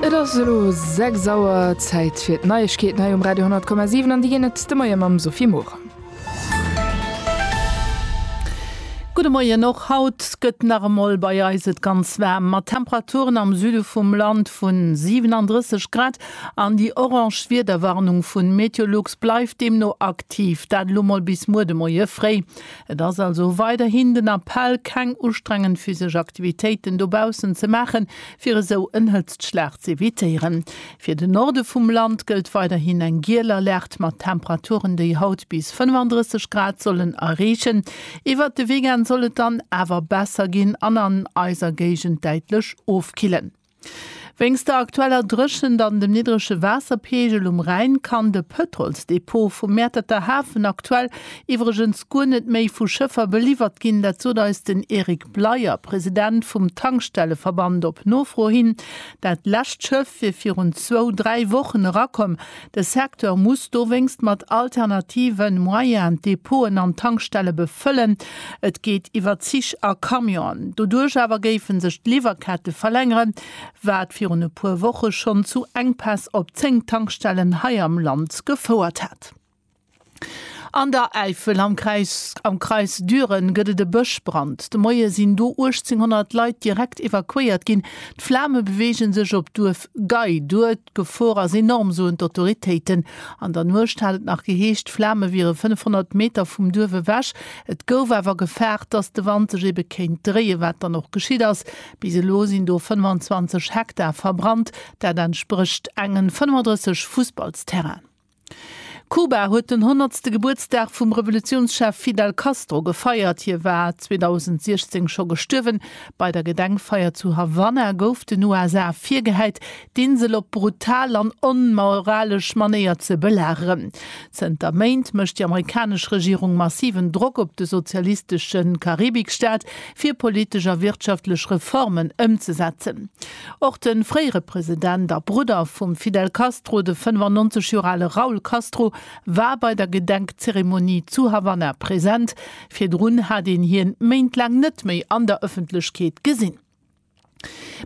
Et ass elo 6 Auer, Zäit fir d'Neiegkeeten hei um Radio 10,7 an déi ginn et de Moie mam Sophie Morang. Gudde Moien, Och haut gëtt nach emol bei eis et ganz waarm, mat Temperaturen am Süde vum Land vu 37 Grad an déi orange Wiederwarnung vu Meteolux bleift deemno aktiv, dat elo mol bis muer de Moie fréi. Et ass also weiderhin den Appell, keng ustrengend physesch Aktivitéiten dobaussen ze maachen, fir esou en Hëtztschlag z'evitéieren. Fir den Norde vum Land gëllt weiderhin eng giel Alerte mat Temperaturen, déi haut bis 35 Grad sollen erreechen. Iwwert de Weekend soll et dann awer besser ginn an an eiser Géigend däitlech ofkillen. Wéinst der aktueller Dréchent an dem niddrege Waasserpeegel um Rhäin kann de Pëtrolsdepot vum Mäerterter Hafen aktuell iwwregens guer net méi vu Schëffer beliwwert ginn. Dat sot eis den Eric Bleyer, President vum Tankstelleverband op Nofro hin. Dat lescht Schëff wier virun zwou, dräi Wochen erakomm, De Secteur muss dowéinst mat alternative Moyenen d'Depoten an d'Tankstelle befëllen. Et geet iwwer Zich a Camionen. Doduerch awer géife sech d'Liwwerkette verlängeren, wat virun e puer Woche schonn zu Enkpäss op 10 Tankstellen hei am Land gefouert hätt. An der Äifel am Kreis am Kreis Düren gëtt et e Bëschbrand. De Moie sinn do 1.800 Leit direkt evakuéiert ginn. D'Flame beweege sech op d'Duerf Gei duer. D'Gefor ass enorm, soen d'Autoritéiten. An der Nuecht hat et nach geheescht, d'Flame wiere 500 Meter vum Duerf ewech. Et gouf awer gefaart, datt de Wand sech ebe kéint dréien, wat dann och geschitt ass. Bis elo sinn do 25 Hektar verbrannt. Dat entsprécht engen 35 Fussballsterrainen. Kuba huet den honnertste Gebuertsdag vum Revolutiounschef Fidel Castro gefeiert. Hie war 2016 scho gestuerwen. Bei der Gedenkfeier zu Havanna gouf den USA virgehäit, d'Insel op brutal an onmoralesch Manéier ze belageren. Zënter Méint mécht déi amerikanesch Regierung massiven Drock op de sozialistesche Karibikstaat, fir politesch a wirtschaftlech Reformen ëmzesetzen. Och de fréiere President a Brudder vum Fidel Castro, de 95 Joer ale Raul Castro, war bei der Gedenkzeremonie zu Havanna present. Virdrun hat een hien Méint laang net méi an der Ëffentlechkeet gesinn.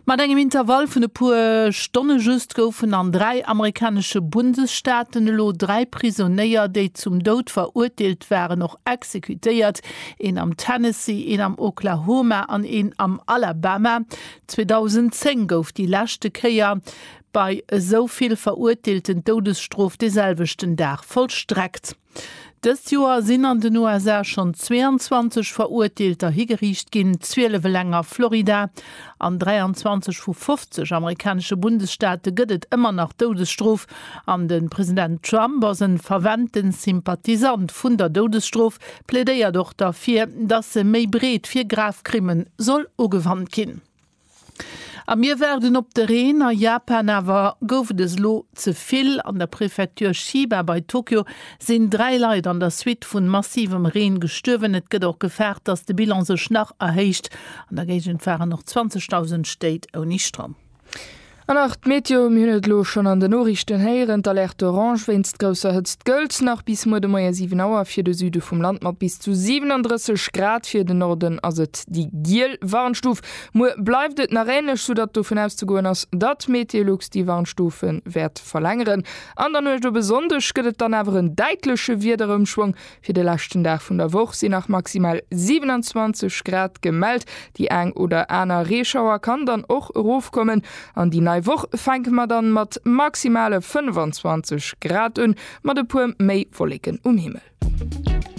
Mat engem Intervall vun e puer Stonne just goufen an dräi amerikanesche Bundesstaaten elo dräi Prisonéier, déi zum Doud verurteelt waren, och exekutéiert, een am Tennessee, een am Oklahoma an een am Alabama. 2010 gouf déi leschte Kéier bei esou vill Verurteelten d'Doudesstrof de selwechten Dag vollstreckt. Dëst Joer sinn an den USA schonn 22 Verurteelter higeriicht ginn, 12 eleng a Florida. An 23 vu 50 amerikanesche Bundesstaate gëtt et ëmmer nach d'Doudesstrof. An de President Trump ass en ferventen Sympathisant vun der Doudesstrof, plädéiert och derfir, dass se méi breet fir grav Krimmen soll ugewannt ginn. A mir waarden op de Reen a Japan. Awer gouf et es elo ze vill? An der Prefecture Chiba bei Tokio sinn 3 Leit an der Suite vun massivem Reen gestuerwen. Et gëtt och gefaart, dass de Bilan sech nach erhéicht. An der Géigend waren och 20.000 Stéit ouni Stroum. An nach d'Meteo, Mir hunn et elo schonn an den Noriichten héieren, d'Alerte orange wéinst grousser Hëtzt gëllt nach bis muer de Moie 7 Auer fir de Süde vum Land mat bis zu 37 Grad. Fir den Norden ass et déi giel Warnstuf. Muer bleift et nach änlech, soudatt dovun auszegoen ass, datt Meteolux déi Warnstufe wäert verlängeren. An der Nuecht op e Sonndeg gëtt et dann awer en däitleche Wiederëmschwong. Fir de leschten Dag vun der Woch sinn nach maximal 27 Grad gemellt. Déi eng oder aner Reeschauer kann dann och erofkommen. An déi nei Woch fänke mer dann mat maximale 25 Grad un, mat e puer méi Wolleken um Himmel.